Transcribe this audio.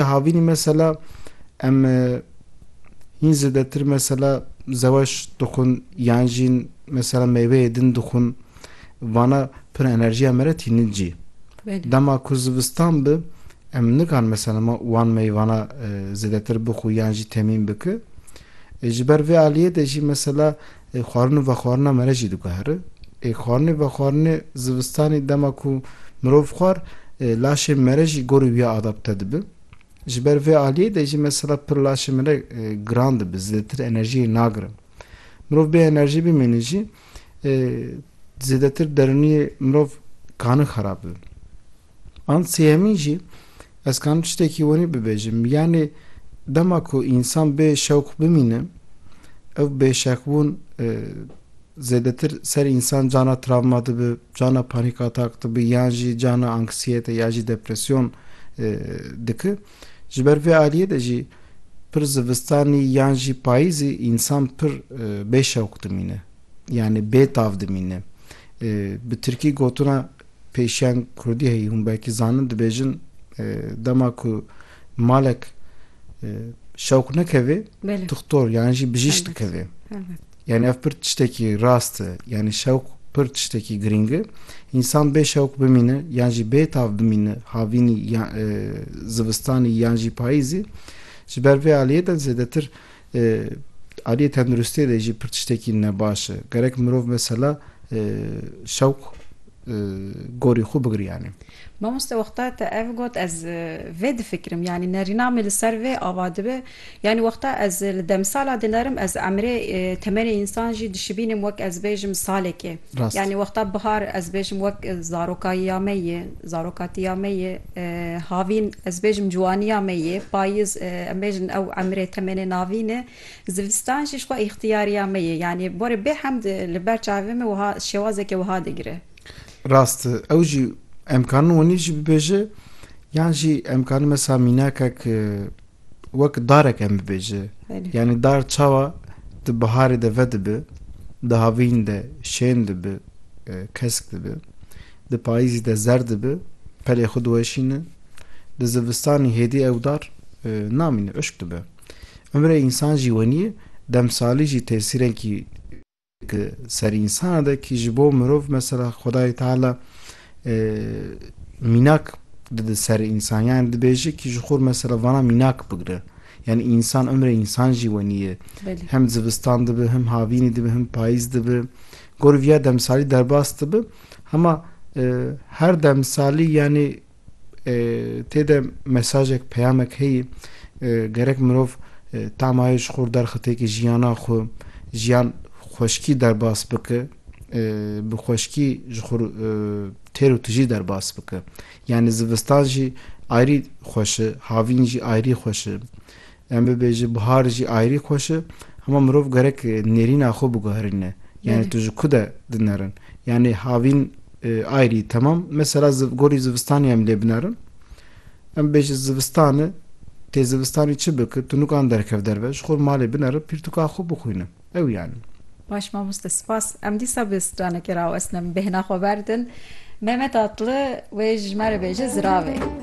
Di havînî mesela em hîn zêdetir mesela zeweş dixwin yan jî mesela mêweyê din dixwin vana pir enerjiya me re tînin cî. Dema ku zivistan bi em nikan mesela ma wan meyvana zêdetir bixwi yan jî temîn biki. Ji ber vê aliyê de jî mesela Ê xwarin û vexwarina me re jî diguhere. Ê xwarin û vexwarinê zivistanê dema ku mirov xwar ê laşê me re jî gorî wiya adapte dibe. Ji ber vê aliyê de jî mesela pir laşê me re giran dibe, zêdetir enerjiyê nagire. Mirov bê enerjî bimîne jî zêdetir derûniyê mirov kane xerab bibe. An sêyemîn jî ez kanim tiştekî wenî bibêjim, yanî dema ku însan bê şewq bimîne, ew bêşeqbûn zêdetir ser însan cana travma dibi, cana panîk atak dibi yan jî cana anksiyete ya jî depresyon diki. Ji ber vê aliyê de jî pir zivistanî yan jî payîzî însan pir bêşewq dimîne, yanî bêtav dimîne. Bi tirkî gotina Pêşeng Kurdî heyî hûn belkî zanin dibêjin dema ku malek şewq nekevê dixtor yan jî bijîş dikevê. Yani ev pir tiştekî rast e. Yani şewq pir tiştekî girîng e. Însan bê şewq bimîne yan jî bê tav bimîne havînî zivistanî yan jî payîzî ji ber vê aliyê de zêdetir Li aliyê tenduristiyê de jî pir tiştekî ne baş e. Gerek mirov mesela şewq gorî xwe bigiriyanê. Mamoste wexta te ev got ez vê difikirim yanî nerîna min li ser vê ava dibe. Yanî wexta ez li demsala dinerim ez emrê temenê însan jî dişibînim wek ez bêjim salekê. Yanî wexta bihar ez bêjim wek zarokayiya me yê, zaroka tiya me yê. Havîn, ez bêjim ciwaniya me ye, payiz em bêjin ew emrê temenê navîn e, zivistan jî jixwe îxtiyariya me ye. Yanî borê bêhemd li ber çavê me wiha şêwazeke wiha digire. Rast e. Ew jî em karin wenî jî bibêje yan jî em karin mesela mînakek wek darek em bibêje. Yanî dar çawa di biharê de vedibi, di havîn de şên dibi, kesk dibi, di payîzî de zer dibi, pelê xwe diweşîne, di zivistanî hêdî ew dar namîne, uşk dibe. Umrê însan jî wenî ye, demsalî jî tesîrenkî. Di ser însan de kî ji bo mirov mesela Xwedayê Teala mînak dide ser însan yani dibêje kî ji xwe mesela vana mînak bigire. Yani însan ömrê însan jî wenî ye. Hem zivistan dibe, hem havînê dibe, hem payîz dibe. Gorî viya demsalî derbas dibe. Hema her demsalî yani Tê de mesajek, peyamek heye. Gerek mirov tamayê ji xwe derxite ki jiyana xwe, jiyan xweşkî derbas bike, bi xweşkî ji xwe têr û tijî derbas bike. Yanî zivistan jî ayrî xweş e, havîn jî ayrî xweş e. Yan bibêje bihar jî ayrî xweş e. Hema mirov gerek nêrîna xwe biguherîne. Yanî tu ji ku de dinerin. Yanî havîn ayrî temam. Mesela gorî zivistanê em lê binerin. Em bibêje zivistan e. Tê zivistanê çi bike? Tu nukan derkev derve. Ji xwe malê binere pîrtuka xwe bixwîne. Ew yanî. Baş mamoste spas. Em dîsa bi stranekê rawestine. Min bêhna xwe berdin. Mehmet Atlı wê ji me re bêje ziravê.